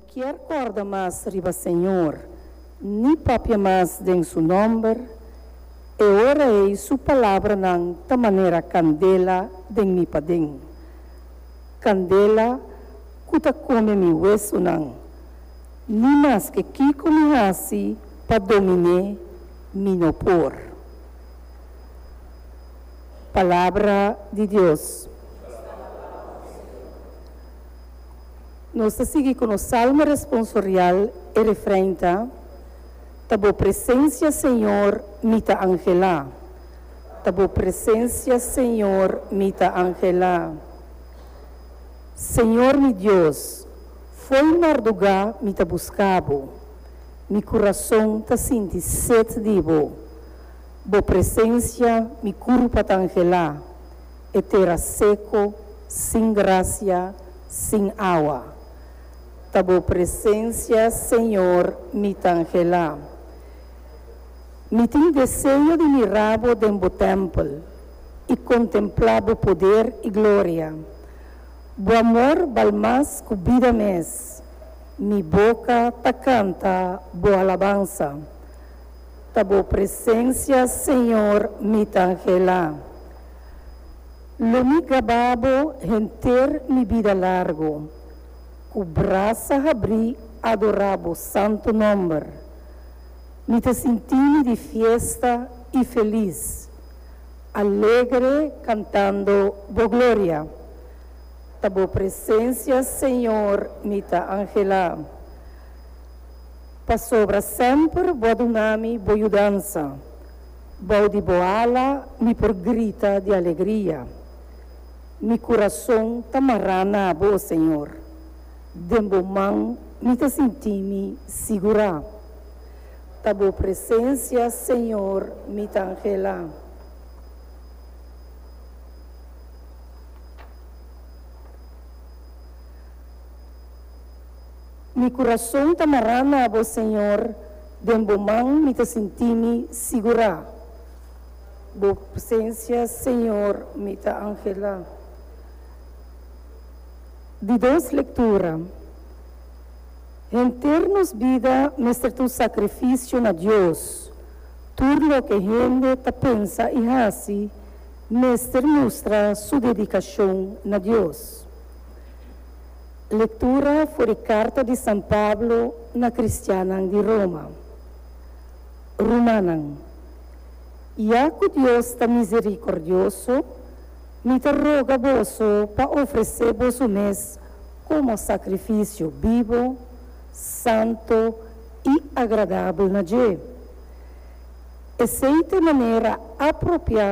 Kier corda mas riba Señor, ni papia mas den su nomber, e ora ei su palabranan ta manera candela den mi paden, candela cu ta come mi huesonan. Ni maske kico mi haci pa dominé, mi no por. Palabra di Dios. Nos ta sigui cu nos salmo responsorial, e refrein ta, Ta bo presencia, Señor, mi ta angela. Ta bo presencia, Señor, mi ta angela. Señor mi Dios, fo'i marduga mi ta busca bo, mi curason ta sinti sed di bo. Bo presencia mi curpa ta angela. e tera seko, sin grasia, sin awa. Ta bo presensia, Señor, mi ta anhelá. Mi tin deseo di mirá bo den bo tèmpel i kontemplá bo poder i gloria. Bo amor bal mas ku bida mes, mi boka ta kanta bo alabansa. Ta bo presensia, Señor, mi ta anhelá. Lo mi caba bo henter mi bida largo, cu brasa habrí adorá bo santo nomber. Mi ta sintí-mi di fiesta i felis, alegre cantando bo gloria. Ta bo presencia, Señor, mi ta anhelá, pasobra semper bo a duna-mi bo yudansa. Bou di bo ala mi por grita di alegria. Mi kurason ta mará na bo, o Señor. Den bo man mi ta sinti'mi sigurá. Ta bo presensia, Señor, mi ta anhelá. Mi kurason ta mará na bo, Señor. Den bo man mi ta sinti mi sigurá. Bo presencia, Señor, mi ta anhelá. Di dos lectura. Henter nos bida mester ta un sacrificio na Dios. Tur loke hende ta pensa i haci mester mustra su dedicacion na Dios. Lectura for di carta di San Pablo na cristiannan di Roma. Rumannan, ya cu Dios ta misericordioso, mi ta roga boso pa ofrece boso mes como sacrificio bibo, santo y agradabel na dje. Esey ta e manera apropia